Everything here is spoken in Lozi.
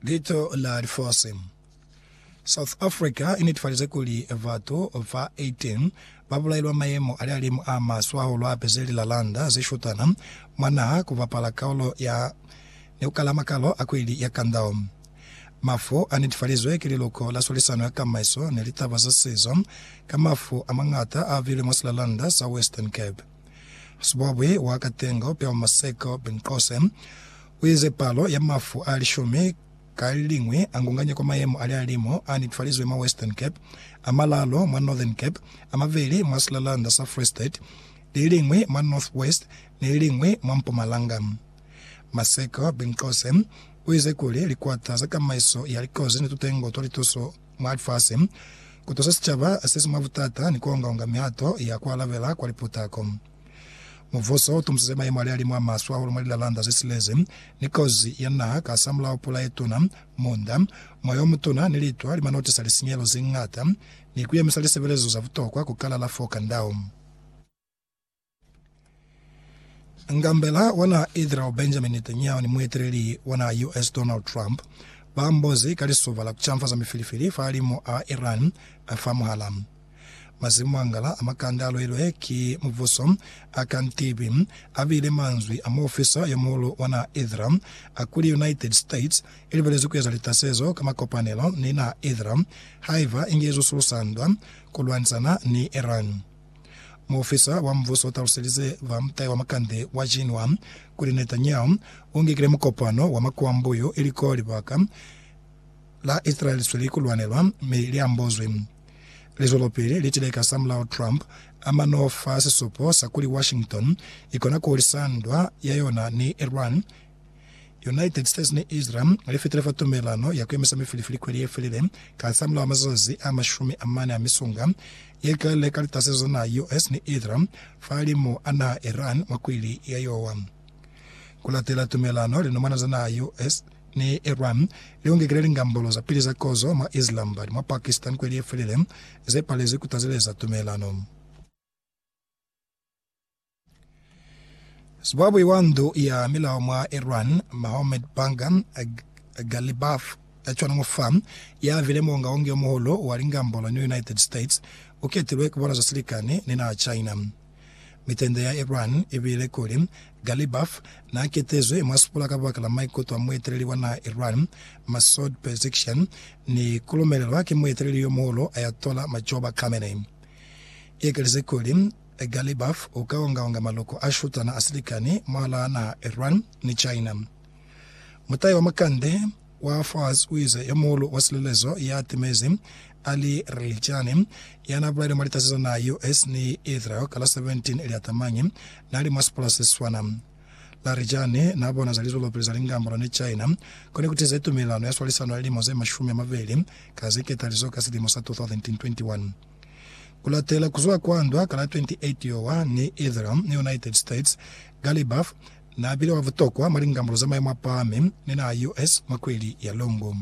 Lito la lifosi. South Africa i netifalize kuli batu ba 18 ba bulailwa mayemo a lihalimu a maswe hahulu hape ze li lalanda ze shutana mwa naha ku bapala kaulo ya ni ku kala makalo a kweli ya kandao. Mafu a netifalizwe ki liluko la swalisano ya kamaiso ni litaba za sizo ka mafu a mangata a bile mwa silalanda sa Western Cape. Sibwabwi wa Katengo Pewa Maseko Binqose uize palo ya mafu a lishumi ka leliñwi angunganye kwa mayemo ali alimo a netefalizwe mwa Western Cape, a malalo mwa Northern Cape, a mabeli mwa silalanda sa Free State, leliñwi mwa North West ni leliñwi mwa Mpumalanga. Maseko Binqose uize kuli likwata za kamaiso ya likozi ni tutengo twa lituso, Mwa lifasi, ku tusa sicaba se si mwa butata ni ku onga-onga mihato ya ku alabela kwa liputako. Mubuso u tumbisize mayemo a lialimu a maswe hahulu mwa lilalanda ze silezi, ni kozi ya naha kahasamulaho pula ye tuna, munda, moya o mutuna ni litwa li man'o tisa lisinyehelo ze ñata ni ku yemisa lisebelezo za butokwa ku kalala f'o kand'aho. Ngambela wa naha Israel Benjamin Netanyahu ni mueteleli wa naha US Donald Trump ba mbozi ka lisuba la ku canfaza mifilifili fa limu a Iran fa muhala. Mazimu a ngala a makande a lwelwe ki mubuso a ka ntibi a bile manzwi a muofisa yo muhulu wa naha Israel a kuli United States i libelezi ku eza litasezo ka makopanelo ni naha Israel haiba inge izo sulusa ndwa ku lwanisana ni Iran. Muofisa wa mbuso u taluselize ba mutai wa makande wa Xinhua kuli Netanyahu u ngekile mukopano wa makwambo yo iliko libaka la Israel li sweli ku lwanelwa mi li ambozwi. Lizwelopili li tile ka samulaho Trump a ma n'o fa sisupo sa kuli Washington i kona ku hulisa ndwa ya yona ni Iran United States ni Israel li fitile fa tumelelano ya ku emisa mifilifili kweli ye felile, kasamulaho wa mazazi a mashumi a mane a misunga ye kelile ka litase za naha US ni Israel fahalimu a naha Iran mwa kwili ya yowa. Ku latela tumelelano, linumwana za naha US ni Iran li ungekile lingambolo za pili za kozo mwa Islamabad mwa Pakistan kweli ye felile, ze palezi ku tazeleza tumelelano. Sibwabwi wa ndu ya milao mwa Iran, Mohammad Banga Ghalibaf, a cwana mwa fa ya vile muongaongi yo muhulu wa lingambo la New United States, u ketilwe ku bona za silikani ni naha China. Mitende ya Iran i bile kuli, Ghalibaf n'a ketezwi mwa sipula ka baka la maikuto a mueteleli wa naha Iran, Masoud Pezeshkian, ni ku lumelelwa ki mueteleli yo muhulu Ayatollah Majouba Khamenei. Ye ke lize kuli, Galibaf u ka onga-onga maloko a shutana a silikani mwalaa naha Iran ni China. Mutai wa makande wa Fars u ize, Yo muhulu wa silelezo ya timezi, Ali Relijani, ya na bulaile mwa litasi za naha US ni Israel ka la 17 Liatamanyi, na li mwa sipula se siswana. Larijani na bona za lizwelopili za lingambolo ni China ko ne ku tize tumelelano ya swalisano ya lilimo ze mashumi a mabeli ka ze ketalizo ka silimo sa 2021. Ku latela ku zwa kwa ndwa ka la 28 Yowa ni Ethram ni United States, Gary Burf n'a bile wa butokwa mwa lingambulu za mayemo a pahami ni naha US mwa kweli ya Longo.